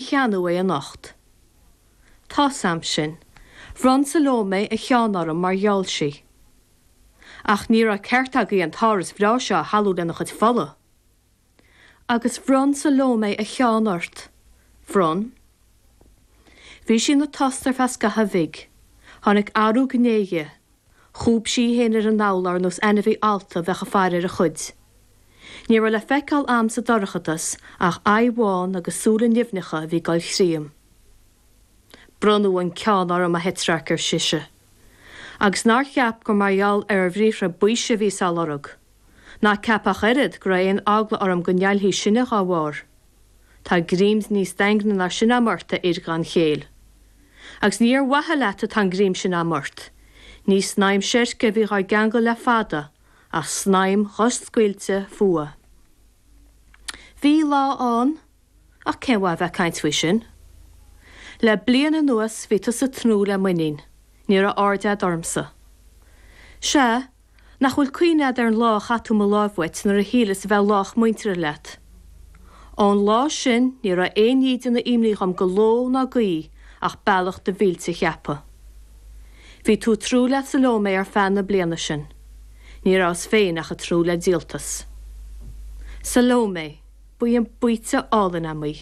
cheannadh é anocht. Tá a fhios a'm sin. Bhronn Salome a cheann orm mar gheall sí. Ach ní raibh ceart agaibh an t-áras breá seo a shalú lena chuid fola. Agus bhronn Salome a cheann ort. Bhronn. Bhí sí ina tost ar feadh scaithimh bhig. Tháinig athrú gné dhi. Chúb sí í féin ar an dtolg ar nós ainmhí allta a bheadh ag faire ar a chuid. Ní raibh le feiceáil a'm sa dorchadas ach aghaidh bhán agus súile nimhneacha a bhí ag dul thríom. Bronnadh an ceann orm, a Thetrarch, ar sise. Agus nár cheap gur mar gheall ar bhriathra baoise a bhíos á lorg? Ná ceap ach oiread go raibh aon eagla orm go ndealófaí sinne dhá bharr. Tá greim níos daingne ná sin a'm ort, a fhir gan chéill. Agus ní ar mhaithe leat atá an greim sin a'm ort. Ní snaidhm seirce a bhí dhár gceangal le fada, ach snaidhm dhoscaoilte fuatha. Bhí lá ann, ach cén mhaith a bheith ag caint faoi sin? Le bliain anuas bhí tusa ag tnúth le m'iníon. Ní raibh aird a'd ormsa. Sea, Nach bhfuil cuimhne a'd ar an lá a chaith tú mo láimh uait nuair a shíleas a bheith lách muinteartha leat? Ón lá sin ní raibh aon ní ag déanamh imní dhom de ló ná d'oíche ach bealach do mhillte a cheapadh. Bhí tú ag tnúth le Salome ar feadh na bliana sin. Ní rabhas féin ach ag tnúth le díoltas. Salome. Ba í an baoite álainn a'm í.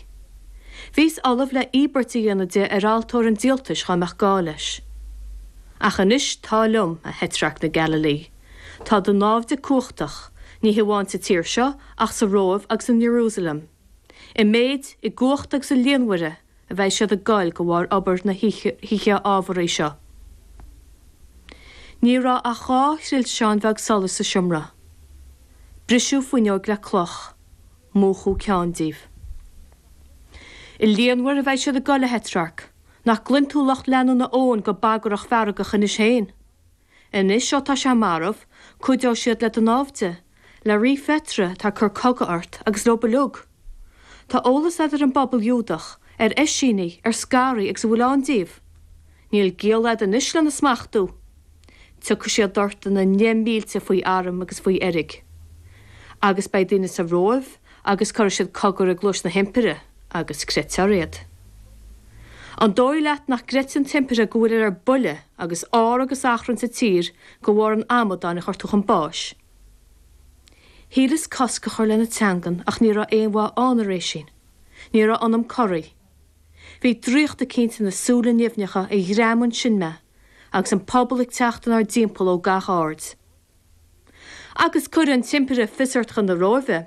Bhíos ullamh le íobairt a dhéanamh de ar altóir an díoltais dhá mbeadh gá leis. Ach anois tá liom, a Thetrarc na Galilee. Tá do náimhde cumhachtach, ní hamháin sa tír seo ach sa Róimh agus in Ierúsalem. I méid, i gcumhacht agus i líonmhaire. a bheidh siad ag goil de bharr obair na hoíche ámharaí seo. Ní raibh ach dhá thrilseán bheag solais sa seomra. Briseadh fuinneoig le cloch. Múchadh ceann díobh. I líonmhaire a bheidh siad ag goil, a Thetrarc. Nach gcluin tú lucht leanúna Eoin go bagrach feargach anois féin? Anois ó tá sé marbh, cuideoidh siad le do náimhde, le Rí Phetra atá ag cur cogadh ort, agus leo uilig. Tá eolas agat ar an bpobal Iúdach, ar Eisínigh, ar Scaraigh agus a bhfuil ann díobh. Níl giall a'd anois lena smachtú. Tiocfaidh siad ort ina ndeich mílte faoi arm agus faoi fheirg. Agus beidh daoine sa Róimh agus cuirfidh siad cogar i gcluais an Impire. Agus creidfear iad. An dóigh leat nach gcreidfidh an t-impire go bhfuilir ar buile agus ár agus achrann sa tír de bharr an amadáin a chuir tú chun báis? Shíleas cosc a chur lena teangan ach ní raibh aon mhaith ann. Thar éis sin ní raibh ionam corraí. Bhí draíocht eicínt ina súile nimhneacha a ghreamaigh ansin mé, agus an pobal ag teacht inár dtimpeall ó gach aird. Agus cuirfidh an t-impire fios ort chun na Róimhe.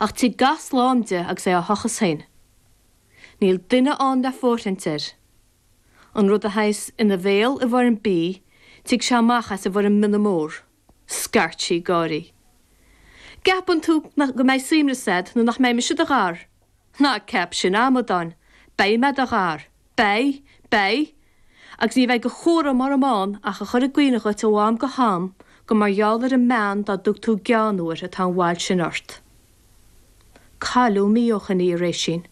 Ach tig gach slám de agus é á thochas féin. Níl duine ann le fóirthint air. An rud a théigheas ina bhéal i bhfoirm bídh tig sé amach as i bhfoirm mionna mór. Scairt sí ag gáirí. Ceapann tú go mbeidh suaimhneas a't nuair nach mbeidh mise i do ghar! Ná ceap sin, a amadáin. Beidh mé i do ghar. Beidh. Beidh. Agus ní bheidh de chúram orm ann ach a chur i gcuimhne dhuit ó am go ham gur mar gheall ar an mbean dá dtug tú gean uair atá an bhail sin ort. Cailleadh mí ó shin í. Tar éis sin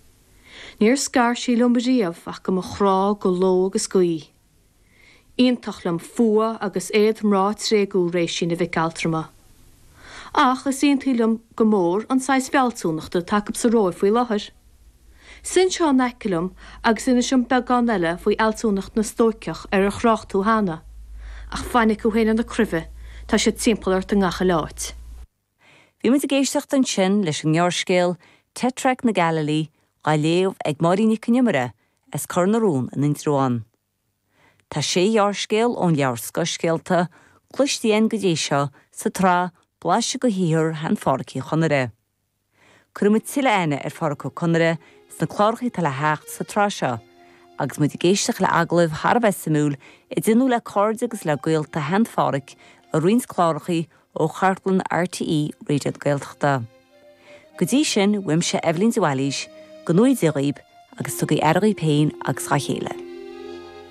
níor scar sí liom riamh ach do mo chrá de ló agus d'oíche. Iontach liom fuath agus éad mná tréigthe tar éis sin, a mhic altrama. Ach is iontaí liom go mór an saghas fealsúnachta atá acu sa Róimh faoi láthair. Suigh anseo in aice liom agus inis dom beagán eile faoi fhealsúnacht na Stóiceach ar ar thrácht tú cheana. Ach fainic thú féin ar na cruimhe, tá siad timpeall ort i ngach uile áit. Bhí muid ag éisteacht ansin leis an ngearrscéal 'Teatrarc na Gaililí' dhá léamh ag Máirín Nic Con Iomaire as Cor na Rón in Indreabhán. Tá sé ghearrscéal ón leabhar Scothscéalta cloiste againn go dtí seo sa tsraith Blaiseadh de shaothar Shean-Phádhraic Uí Chonaire. Cuirfidh muid tuilleadh aithne ar Phádhraic Ó Conaire sna cláracha atá le theacht sa tsraith seo agus muid ag éisteacht le agallaimh thar a bheith suimiúil a déanadh le cairde agus le gaolta Shean-Phádhraic i roinnt cláracha ó chartlann RTÉ Raidió na Gaeltachta. Go dtí sin uaimse Eibhlín de Bhailís go ngnóthaí Dia dhaoib agus tugaí aire dhaoib féin agus dhá chéile.